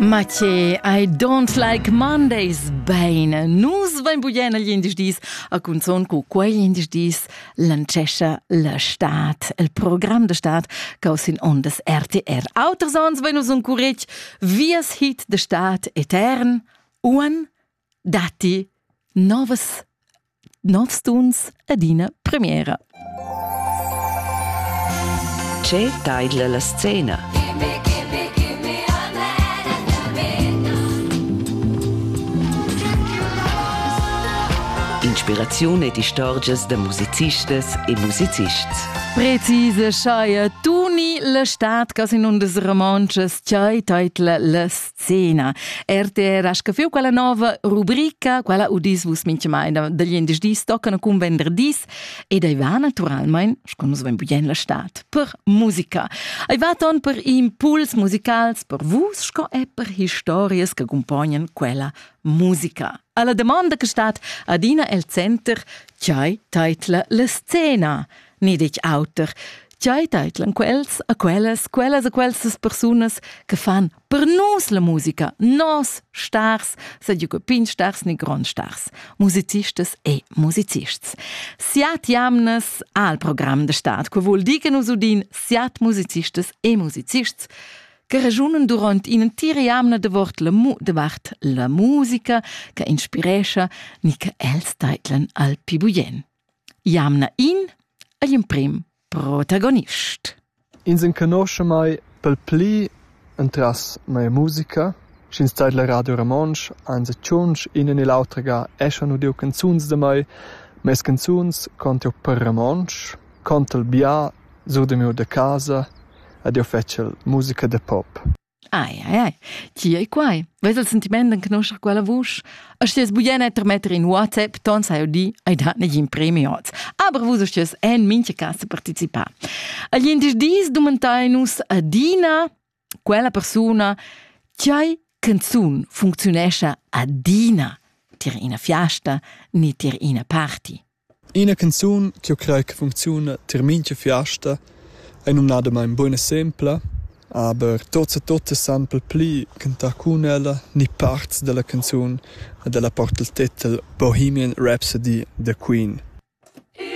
Mathieu, I don't like Mondays. Bene, nus vain bugen agl indisch dis a cunzon cu quei indisch dis lancescha la stat, il program da stat causin ondas RTR. Auter sons vain nus un curetg vias hit de stat etern, uan datti novas, novs tuns ed ina premiera. Tge taidla la scena? Inspiraziun ed istorgias da musicistas e musicists. Precise schaia Tuni la stad cas in undas romontschas, tgei teitla las Zena. RTR ha scafiu quella nova rubrica, quella udis vus mintgamain da gliendisdis toccano cun venderdis ed ei va naturalmein, sco nus vein bugen la stad, per musica. Ei va ton per impuls musicals per vus sco e per historias che accompagnan quella musica. Alla domanda che stat adina el center, chai teitla la scena, ni detg auter. Chai teitlan quels a quellas, quellas a quellas persunas che fan Per nos la musica, nos stars, sed ju pin stars ni gron stars, musicistas e musicists. Siat jamnas al program de stat, que vul dir che nus udin siat musicistas e musicists che ragiunen durant in entira jamna davart la, mu davart la musica che inspirescha ni che els teitlen al pibuien. Jamna in, agl imprim protagonist. Ins enconosce mai pel pli entras mia musica, sch'ins tait la Radio Romontsch, anzi tschunsch in e l'autra ga eschan udiu canzuns da mai, mes canzuns conte eu per Romontsch, conte il bia, sur de miu da casa, ed eu fetsch musica de pop. Ai, ai, ai, ti ei quai. Vus il sentiment d'enconoscer quella vusch? E sties bugen termetter in WhatsApp, ton sai di, ai dat negin premi oz. Aber vus sties en mincha casa participar. Agli indies dis domantai nus adina quella persuna chai canzun funzionescha adina tier ina fiasta ni tier ina party. Ina canzun ch'jeu crei che funcziuna tier mintga fiasta ei numnadamein buca sempla, aber tots e tuttas san per pli cantar cun ella ni parts dalla canzun e dalla porta il tetel Bohemian Rhapsody da Queen.